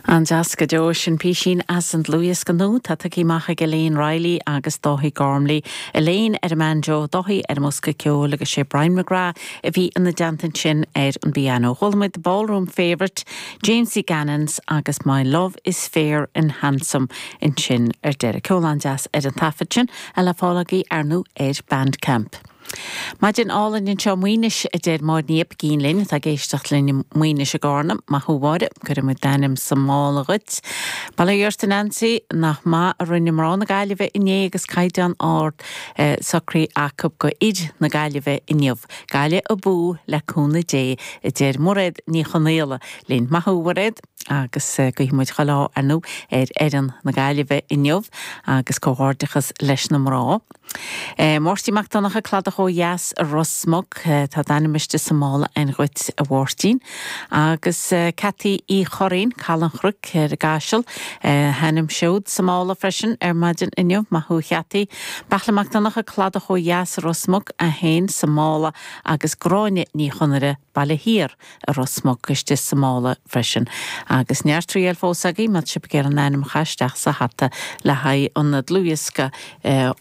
An-deas go deo. Sin písín as an dlúthdhiosca nua atá tugtha amach ag Elaine Reilly agus Dáithí Gormley. Elaine ar an mbanjo, Dáithí ar an mbosca ceoil agus sé Brian McGrath a bhí ina dteannta ansin ar an bpianó. Chuala muid The Ballroom Favourite, Jamesie Gannon's agus My Love is Fair and Handsome ansin ar deireadh. Ceol an-deas ar an taifead sin a le fáil agaibh, ar ndóigh, ar Bandcamp. Maidin álainn anseo i Maínis, a deir Máire Ní Oibicín linn atá ag éisteacht linn i Maínis i gCarna. Maith thú, a Mháire. Cuirfidh muid d'ainm sa mála dhuit. Bail ó Dhia ort, a Nancy. Nach maith a rinne mná na Gaillimhe inné agus caighdeán ard socraithe acu do fhir na Gaillimhe inniu. Gaillimh abú, le cúnamh Dé, a deir Mairéad Ní Chonaola linn. Maith thú, a Mhairéad. agus guífidh muid chuile ádh ar ndú ar fhoireann na Gaillimhe inniu agus comhghairdeachas leis na mná. Máirtín Mac Donncha, Cladach ó Dheas, Ros Muc. Tá d'ainm istigh sa mála againn dhuit a Mháirtín. Agus Ceataí Uí Churraoin, Caladh an Chnoic, ar an gCaiseal. A hainm siúd sa mála freisin ar maidin inniu. Maith thú a Cheataí. Beartla Mac Donncha, Cladach ó Dheas, Ros Muc, é fhéin sa mála agus Gráinne Ní Chonaire, Baile Thiar, i Ros Muc, istigh sa mála freisin. Agus neart triail fós agaibh, má tá sibh ag iarraidh an ainm a chaitheamh isteach sa hata le haghaidh an dlúthdhiosca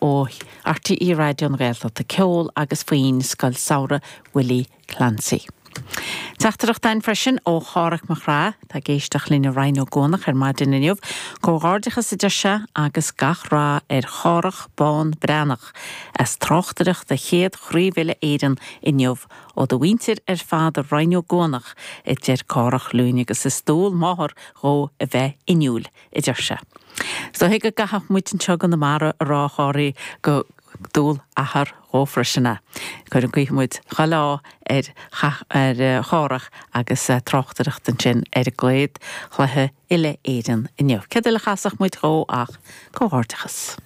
ó RTÉ Raidió na Gaeltachta, Ceol agus Foinn Scoil Samhraidh Willie Clancy. Teachtaireacht againn freisin ó Chárthach Mac Craith, atá ag éisteacht linn i Rinn Ó gCuanach ar maidin inniu. Comhghairdeachas a deir sé agus gach rath ar Chárthach Bán Breathnach as tráchtaireacht do chéad Chraobh Uile Éireann inniu Ó do mhuintir ar fad i Rinn Ó gCuanach, a deir Cárthach linn agus is dual máthar dhó a bheith inniúil, a deir sé. Is dóiche go gcaithfeadh muid anseo i gConamara a rá a Chárthaigh gur dual athar dhó freisin é. Cuirfidh, guífidh muid chuile ádh ar Chárthach agus é ag tráchtaireacht ansin ar an gcéad chluiche uile-Éireann inniu. Céard eile a chasfadh muid dhó ach comhghairdeachas.